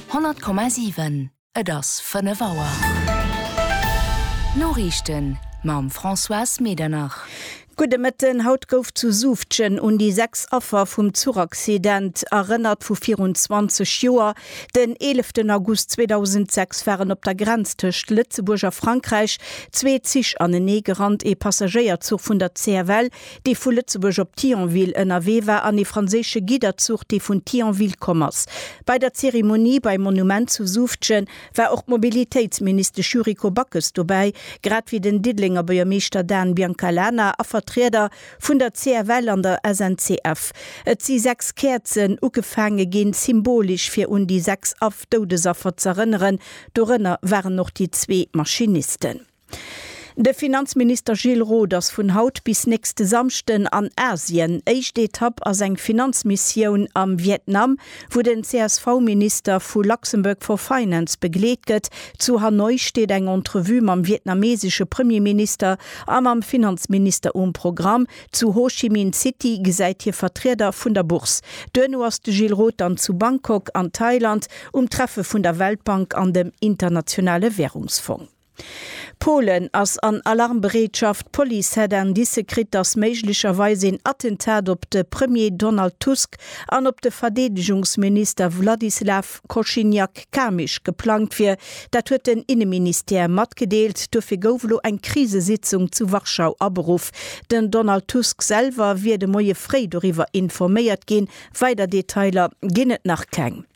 100,7 Et ass 5 Auer. D'Noriichten mam Françoise Medernach. Gudde Mëtten. Haut gouf zu Suuftgen un déi 6 Affer vum Zuchaccident erënnert vu virun 20 Joer. Den 11 August 2006 waren op der Grenz tëscht Lëtzebuerg a Frankräich zwee Zich aneneegerannt. Ee Passagéierzuch vun der CFL dee vu Lëtzebuerg op Thionville ënnerwee war, an ee franséische Gidderzuch, dee vun Thionville komm ass. Bei der Zeremonie beim Monument zu Suuftgen war och d'Mobilitéitsministesch Yuriko Backes dobäi, grad wéi den Diddelenger Buergermeeschter Dan Biancalana a Vertrieder vun der CFL an der SNCF. Et si sechs Käerzen ugefaange ginn, symbolesch fir un déi sechs Af-Doudesaffer z'erënneren. Dorënner waren och déi zwee Maschinisten. De Finanzminister Gilles Roth ass vun haut bis nächste Samschden an Asien. Éischt Etapp ass eng Finanzmissioun am Vietnam, wou den CSV-Minister vu Luxembourg for Finance begleet gëtt. Zu Hanoi steet eng Entrevue mam vietnamesesche Premierminister a mam Finanzminister um Programm. Zu Ho Chi Minh City gesäit hie Vertrieder vun der Bourse. Duerno ass de Gilles Roth dann zu Bangkok an Thailand um Treffe vun der Weltbank an dem Internationale Währungsfong. Polen ass an Alarmbereetschaft, D'Police hätt Indicë kritt, datt méiglecherweis een Attentat op de Premier Donald Tusk an op de Verdeedegungsminister Wladyslaw Kosiniak-Kamysz geplangt wier. Dat huet den Inneministère matgedeelt. Dofir gouf elo eng Krisesitzung zu Warschau aberuff. Den Donald Tusk selwer wier de Moie fréi doriwwer informéiert ginn. Weider Detailer ginn et nach keng.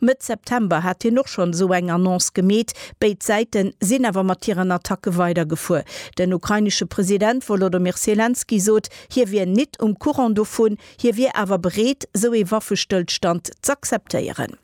Mëtt September hat hien och schonn esou eng Annonce gemeet. Béid Säite sinn awer mat hiren Attacke weidergefuer. Den ukrainesche President Wolodomyr Selenskyj sot, hie wier nit um Courant dovun, hie wier awer bereet, esou ee Waffestëllstand z'akzeptéieren.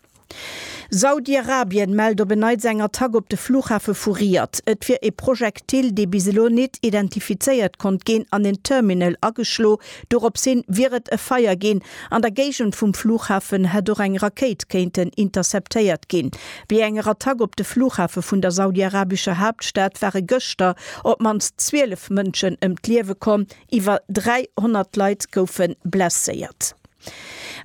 Saudi-Arabien mellt op en Neits eng Attack op de Flughafe vu Riyadh. Et wier ee Projektil, dee bis elo nit identifizéiert konnt ginn, an en Terminal ageschloe Doropshin wier et e Feier ginn. An der Géigend vum Flughafen hätt och eng Rakéit kéinten interceptéiert ginn. Wéi enger Attack op de Flughafe vun der saudiarabescher Haaptstad ware gëschter op d'mannst 12 Mënschen ëm d'Liewe komm, iwwer 300 Leit goufe blesséiert.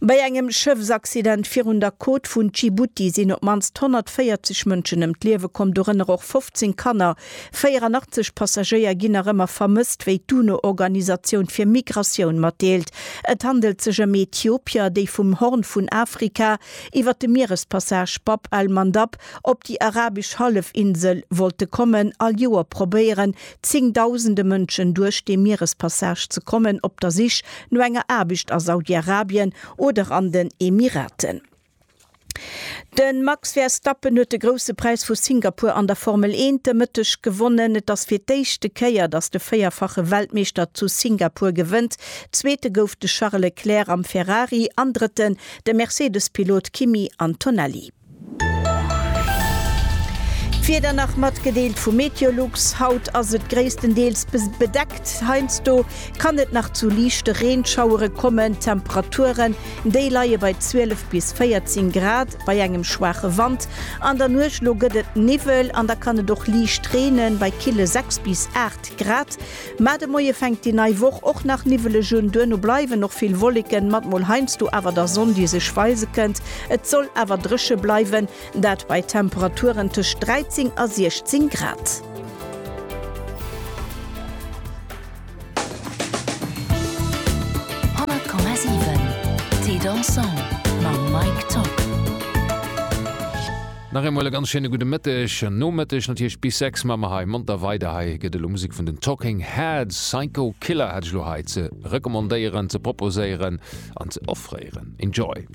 Bei engem Schëffsaccident virun der Côte vun Dschibuti sinn op d'mannst 140 Mënschen ëm d'Liewe komm, dorënner och 15 Kanner, 84 Passagéier ginn nach ëmmer vermësst, wéi d'UNO-Organisatioun fir Migratioun matdeelt. Et handelt sech ëm Ethiopier, déi vum Horn vun Afrika iwwer de Mierespassage Bab al-Mandab op déi arabesch Hallefinsel wollte kommen. All Joer probéieren zéngdausende Mënschen duerch dee Mierespassage ze kommen, op der Sich no enger Aarbecht a Saudi-Arabien oder an den Emiraten. De Max Verstappen huet de Grousse Präis vu Singapur an der Formel 1 de Mëtteg gewonnen. Et ass fir d'éischte Kéier, datt de véierfache Weltmeeschter zu Singapur gewënnt. Zweete gouf de Charles Leclerc am Ferrari an Drëtten de Mercedes-Pilot Kimi Antonelli. D'Wieder nach matgedeelt vu Meteolux, Haut ass et gréisstendeels bedeckt, heiansdo kann et nach zu liichte Reenschauere kommen. D'Temperature Déi leie bei 12 bis 14 Grad bei engem schwaache Wand. An der Nuecht elo gëtt et Niwwel an da kann et och liicht reenen bei kille 6 bis 8 Grad. Mar de Moie fänkt déi nei Woch och nach niwweleg un. Duerno bleiwen och vill Wolleken mat mol heiansdo awer der Sonn, déi sech weise kënnt. Et soll awer dréche bleiwen, dat bei Temperaturen tëscht 13 a 16 Grad. Nach eemol e ganz schéine gudde Mëtteg, Nomëtteg natierlech, bis 6 maache mer hei monter weider. Hei gëtt elo Musek vun den Talking Heads, Psycho Killer hat ech elo hei ze recommandéieren, ze proposéieren an ze offréieren. Enjoy!